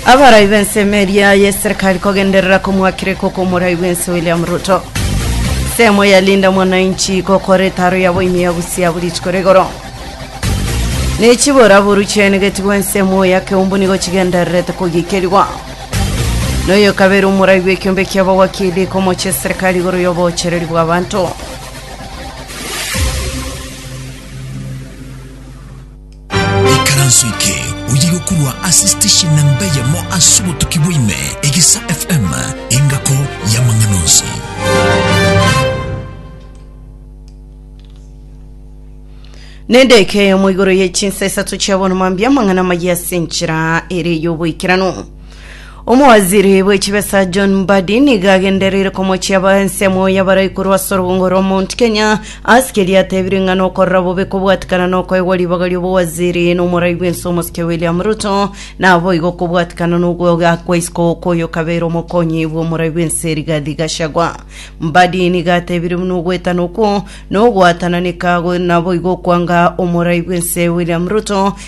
Abarai b'ensemo eria y'eserikali kogenderera komwakire koko omorai bw'ense William Ruto. Semo ya Linda Mwananchi gokora etaro yabo ime ya busia buri rituko rigoro. Ne chibora boru chiaenegeti bw'ensemo ya keumbu nigo chigendererete kogikerigwa. Noyo kabere omorai bw'ekiombe kia bawakili komocha eserikali igoro y'obochereri bw'abanto. Ikaranso eke oyiga okorwa ase station namba eyemo ase obotuki bwaime, Egisa FM, engako y'amang'ana onsi. Nendeke eyomo igoro ye chinsa isato chia bono mambia amang'ana amaya ase enchera ere y'oboikeranu. Omowaziri bwe chibesa John Mbadi nigo agendereire komochia ba ensemo y'abaraikorwa ase orobongo rwa Mount Kenya ase keria atebire ng'a nokorora bobe kobwatikana nokoegwa ribaga ri'obowaziri n'omorai bw'ense omosike William Ruto, naboigo kobwatikana nogwegwa kwa isiko kw'oyokabeire omokonyi bw'omorai bw'ense Rigathi Gachagua. Mbadi nigo atebire buna ogwetana okwo nogwatananeka naboigo okwanga omorai bw'ense William Ruto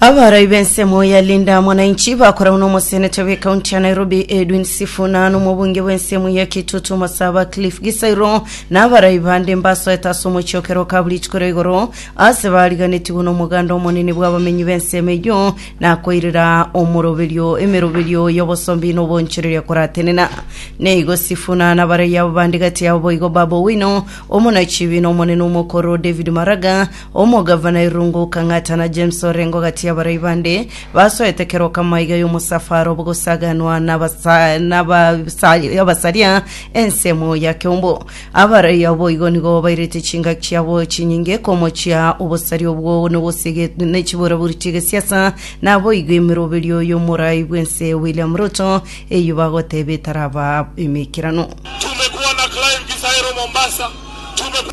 Abarai b'ensemo ya Linda Mwananchi bakoragwa n'omoseneta bw'ekaunti ya Nairobi Edwin Sifuna na omobunge bw'ensemo ya Kitutu Masaba Cliff Gisairo na abarai bande mbasoete ase omochiokero ka buri rituko ria igoro ase bariganetigwe n'omoganda omonene bw'abamenyi b'ensemo eyio na koirera omoroberio emeroberio y'obosombi na obonchoreria koratenena. Neigo Sifuna na abarai abo bande gati yabo boigo Babu Owino, omonachibi na omonene omokoro David Maraga, Omogavana Irungu okang'atana James orenge ogati y'abarai bande basoete kero kamo aiga y'omosafara obogosaganwa n'abasa- n'abasa- y'abasaria ensemo ya keumbu. Abarai abo igo nigo bairete chingaki chiabo chinyinge komochia obosaria obwo nogosege- nechiburaburi chi'egesiasa naboigo emeroberio y'omorai bw'ense William Ruto eyio bagoteba etaraba emeikeranu. Tumekuwa na Clive Kisaero Mombasa, tumekuwa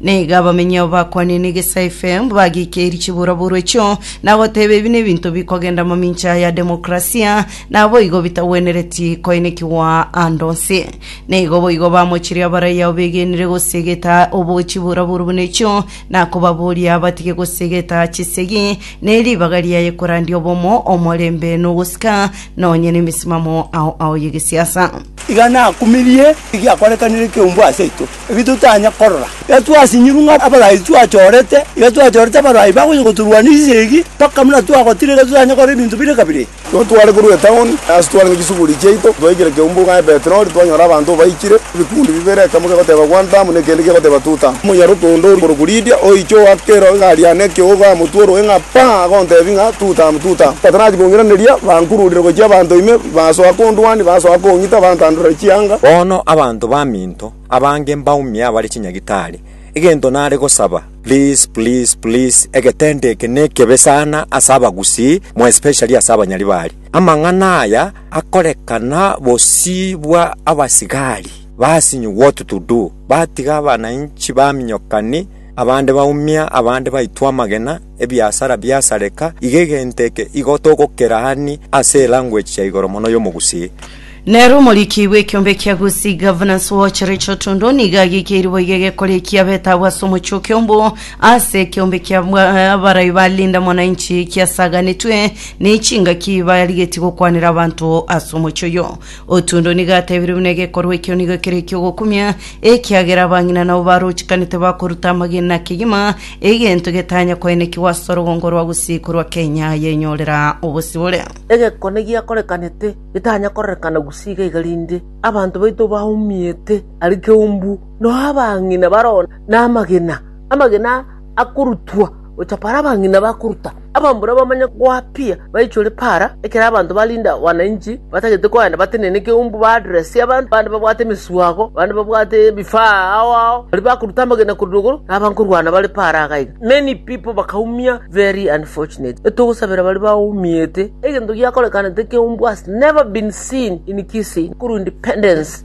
Na iga abamenyi abo bakwanire egesaife, bagiikeiri chiburaburo echio, na goteba ebi nebinto bikogenda mamincha ya demokrasia, naboigo bitagwenereti koinekigwa ande onsi. Na igo boigo bamochirie abaraiya abo begenire gosiegeta obo chiburaburo buna echio, na kobaboria batige gosiegeta chisegi, ne ribaga riaye korandia obomo, omorembe, na ogosika, nonye nemesimamo ao ao y'egesiasa. Iga nakumirie egiakorekanire ekeumbu ase intwe, ebi totanya korora. Iga twasinyirwe ng'a abarai twachorete, iga twachorete abarai bagocha gotorwania esegi, mpaka buna twagotire iga totanye korora ebinto bire kabere. Nabo tware korwa etaoni, ase twarenge chisuguri chiaito, twaikire keumbu ng'a Ebetroni, twanyora abanto baikire, ebikundi bibere, ekemo kegoteba Kwantamu, na ekende kegoteba Tutamu. Omonyaroke onde okorokwa Lidia, oiche oakera egari yane ekeogo, amotwe orogee ng'a paa, agontebia ng'a, Tutamu, Tutamu! Batanachia kong'iraneria, bankururire gochia abanto ime, basoa kondwania, basoa kong'ita, bantandorera chianga. Bono abanto baminto abange mbaumie abare chinyagitari, egento nare gosaba please please please egetendo eke nekebe sana ase abagusii mo especially ase abanyaribari. Amang'ana aya akorekana bosii bwa abasigari basinyi what to do batiga abanainchi baminyokani abande baumia abande baitwa amagena ebiasara biasareka iga egento eke igo togokeraani ase elanguage ya igoro mono y'omogusii. Nere omoriki bw'ekiombe kia Gusii Governance Watch Rachel Tondo nigo agekeiri boigo egekorekia beta abwo ase omochoke omboo ase ekiombe kia bwa- abarai ba Linda Mwananchi kiasaganetwe ne chingaki barigetie gokwanera abanto ase omochie oyo. Otundo nigo atebirie buna egekorwa ekio nigo kere ekiogokumia ekiagera abang'ina nabo barochikanete bakoruta amagena kegima egento getanya koenekigwa ase orugongo rwa Gusii korwa Kenya yenyorera obosibore. Egekone giakorekanete Getanya kororekana gusii iga iga rinde abanto baito baumiete are keumbu, nao abang'ina baroo namagena, amagena akorutwa gocha para abang'ina bakoruta. Abambura bamanye goapia baichore para, ekero abanto barinde wananchi batagete koenda batenene keumbu ba address abanto, bande babwate emeswago, bande babwate ebifaa ao ao, baria bakoruta amagena korwa igoro, nabo nkorwana bare para iga iga. Many people bakaumia very unfortunate. Etogosabera baria baumiete. Egento giakorekanete keumbwa has never been seen in Kisii. Kuru independence.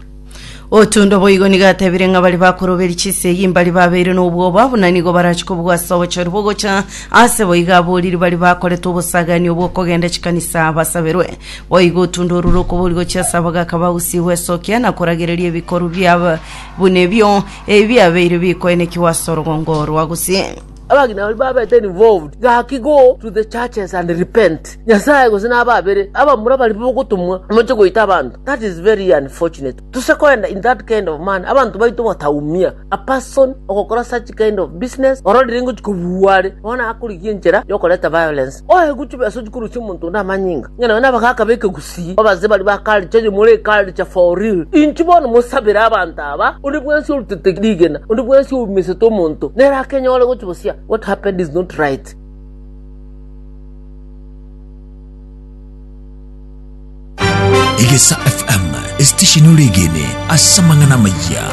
Otundo boigo nigo atebire ng'a baria bakoroberia chisegi mbari babeire nobwoba buna nigo barache kobugwa ase obochori bogocha ase boigo aboriri baria bakorete obosagani obw'okogenda chikanisa basaberwe boigo otundo orure okobori gochia ase abagaka ba Gusii gwesokia na koragereria ebikorwa bia buna ebio Ebi biabeire bikoenekigwa ase orogongo orwa gose. Abagima baria babete involved gaki go to the churches and repent nyasaye gose na ababere abamura bari bogotumwa moche goita abanto that is very unfortunate tose koenda in that kind of manner abanto baito bataumia a person ogokora such kind of business ororire ngochi kobua are bono akorigia enchera yokoreta violence oe gochubesa ochikorusia omonto onde amanyinga Ng'a nao nabagaaka b'ekegusii babaze baria ba culture enyomoro eye culture for real. Inki bono mosabere abanto aba? Onde bwensi orutete rigena, onde bwensi oumisete omonto, nere akenyore gochia bosia. What happened is not right. Egesa FM, esitesheni ore egene ase amang'ana amaya.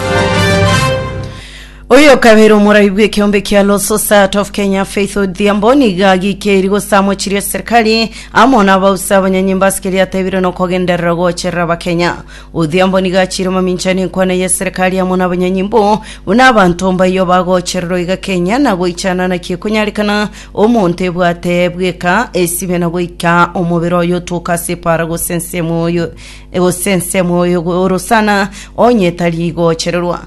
Oyo okabeire omorabi bw'ekeombe kia Law Society of Kenya Faith Odhiambo nigo agikeirie gosamwa chiria serikali amo na abausi abanyanyimba ase keria atebire nokogenderera gocherera abakenya. Odhiambo nigo achiire mamincha nenkwana ya serikali amo na abanyanyimba oo buna abanto mbayio bagochererwa iga Kenya na goichana naki ekonyarekana omonto ebwate bweka esibe na goika omobere oye otoka ase epara gose ensemo oyo gose ensemo oyo orosana onye etari gochererwa.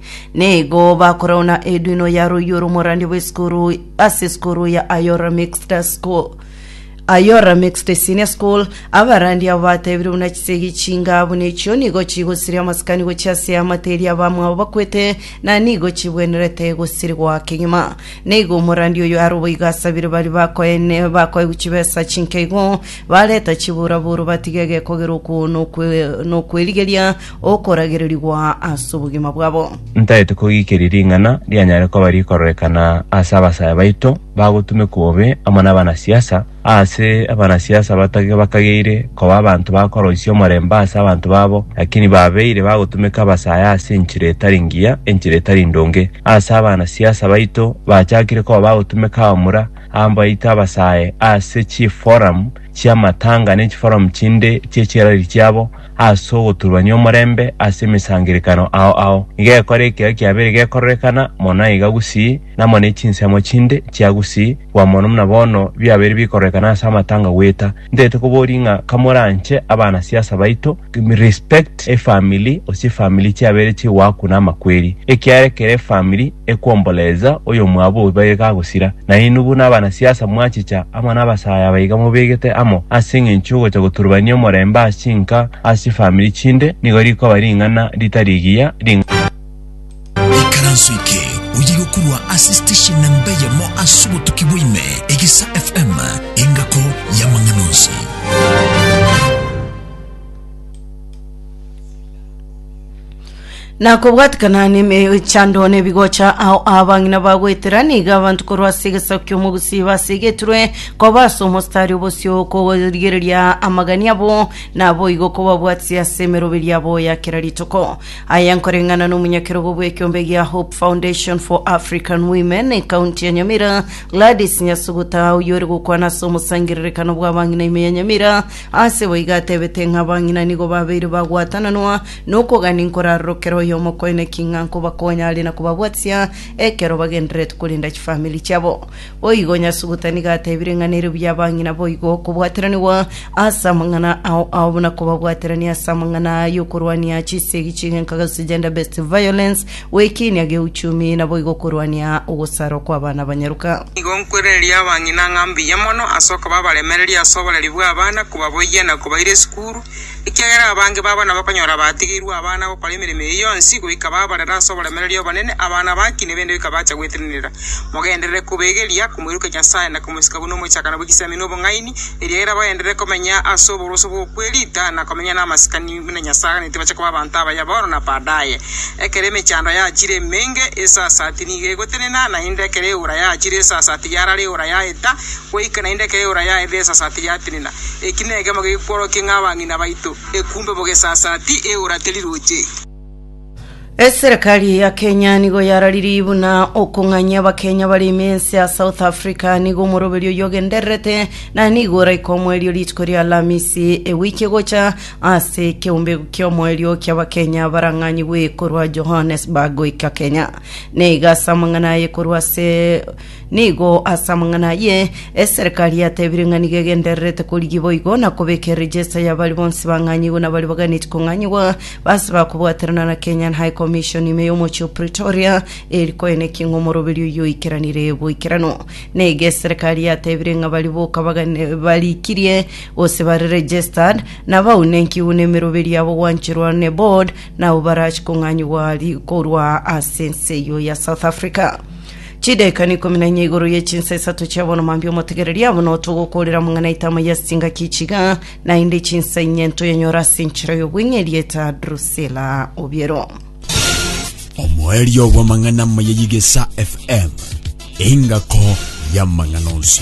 Nigo bakorauna eduino ya royio romorandi bw'esukuru ase esukuru ya Ayora Mixed School Ayora Mixed Senior School abarandi abo batebire buna chisegi chinga buna echio nigo chigosiria amasikani gochia ase amateri abamwabo bakwete na nigo chibwenerete gosirigwa kegima nigo omorandi oyo aroboigo asabire bari bakoene bakoegwa chibesa chinkeigo bareta chiburaburu batige gekogerwa okwo nokwe- nokwerigeria okoragererigwa as'obogima bwabo. Ntaete kogikeria ring'ana rianyare koba rikororekana ase abasaya baito bagotumekwa bobe amo nabanasiasa, aase abanasiasa batage bakageire koba abanto bakoroisia omorembe ase abanto babo, lakini babeire bagotumeka abasaya ase enchera etari ngiya, enchera etari ndonge. Aase abanasiasa baito bachakire koba bagotumeka abamura abaito abasae ase chiforum chiamatanga nechiforum chinde chiechirari chiabo, as'ogoturbania omorembe as'emesangerekano ao ao, igekora ekero kiabeire gekororekana mono iga gusii, namo ne chinsemo chinde chia gusii gwa mono muna bono biabeire bikororekana as'amatanga gweta. Ntaete koboria ng'a kamoranche abanasiasa baito, respect efamily, gose efamily chiabeire chigoakuna amakweri, ekiara ekero efamily, ekwomborererza oyomwabo oibaga ekagosira, nainwe buna abanasiasa mwachicha amo nabasaae abaiga mobegete amo ase engencho y'ogocha goturubania omorembe ase chinka ase chifamiri chinde, nigo rikoba ring'ana ritari rigiya, ring'ana. Ikaranso eke oye yokorwa ase station namba eyemo ase obotuki bwa ime, Egesa FM, engako y'amang'ana onsi. Na kobwatikana nemechando na ebigocha ao abang'ina bagoetera, niga abanto korwa ase egesaku ki'omogusi basegetirwe koba ase omostari obosio korigereria amagani abo, naboigo kobabwatisi ase emeroberi yabo ya kera rituko. Aya nkoreng'ana nomonyakerogo bw'ekiombe gia Hope Foundation for African Women ekaunti ya Nyamira, Gladys Nyasuguta, oyore gokwana ase omosangererekano bw'abang'ina ime ya Nyamira, ase boigo atebete ng'a abang'ina nigo babeire bagwatananwa Nokogania nkorarorokera oyomokoene ki ng'a nkobakonya are na kobabwatisia ekero bagendererete korenda chifamiri chiabo. Boigo Nyasuguta nigo atebire ng'a nere buya abang'ina boigo kobwateranigwa ase amang'ana ao ao buna kobabwaterania ase amang'ana aya yokorwania chisegi chi'egenka gose gender based violence, goekinia geuchumi, na boigo korwania ogosarwa kw'abana abanyaroka. Nigo nkwerereria abang'ina ng'a mbuya mono ase okoba abaremereria ase oboreri bw'abana, kobaboyia na kobaira esukuru, Ekiagera abange babo nabakonyora batigeirwe abana gokora emeremo eye yonsi, goika babarera ase oboremereria obonene, abana baki nebende goika bacha gwetenenera. Mogenderere kobegeria komoirokia Nyasae na komosika buna omochakano bwe chisemi na obong'aini, eriagera bagenderere komenya ase oboroso bw'okwerita na komenya namasikani buna Nyasae aganete bache koba abanto abaya bono na baadaye. Ekero emechando yachire emenge, esasati nigo egotenena, naende ekero eora yachire esasati yarara eora yaeta, Goika naende ekero eora ya Ebeesasati yatenena, eki nekemo gekworokia ng'a abang'ina baito ekumbe bogesasati eora teriroche. Eserekari ya Kenya nigo yararirie buna okong'anyia Abakenya bare ime ense ya South Africa nigo omoroberi oyio ogendererete na nigo oraika omoerio rituko ria Alamisi ewiki egocha ase ekeombe ki'omoerio ki'Abakenya barang'anyigwe korwa Johannesburg goika Kenya. Neiga ase amang'ana aye korwa ase Nigo as'amang'ana ayio eserekari yatebire ng'a nigo egendererete korigia boigo na kobeka erejesta ya baria bonsi bang'anyigwe na baria baganeti kong'anyigwa base bakobwaterana na Kenyan High Commission ime y'omochie o Pretoria eri koenekia ng'a omoroberi oyio oikeranire boikeranu. Nigo eserekari yatebire ng'a baria boka bagane- barikirie gose bare registered nabaunenkiwu n'emeroberi yabo gwancherwa ne board nabo barachi kong'anyigwa ri- korwa as'ense eyio ya South Africa. Chidaeka n'ikomi na inye igoro ye chinsa isato chia bono mambia omotegereria abwo notogokoorera amang'ana aito amo ya stinga kichiga, naende chinsa inye ntoyanyore ase enchera y'obweng'e erieta Drusila obiero. Omoerio bw'amang'ana amaya y'Egesa FM, engako y'amang'ana onsi.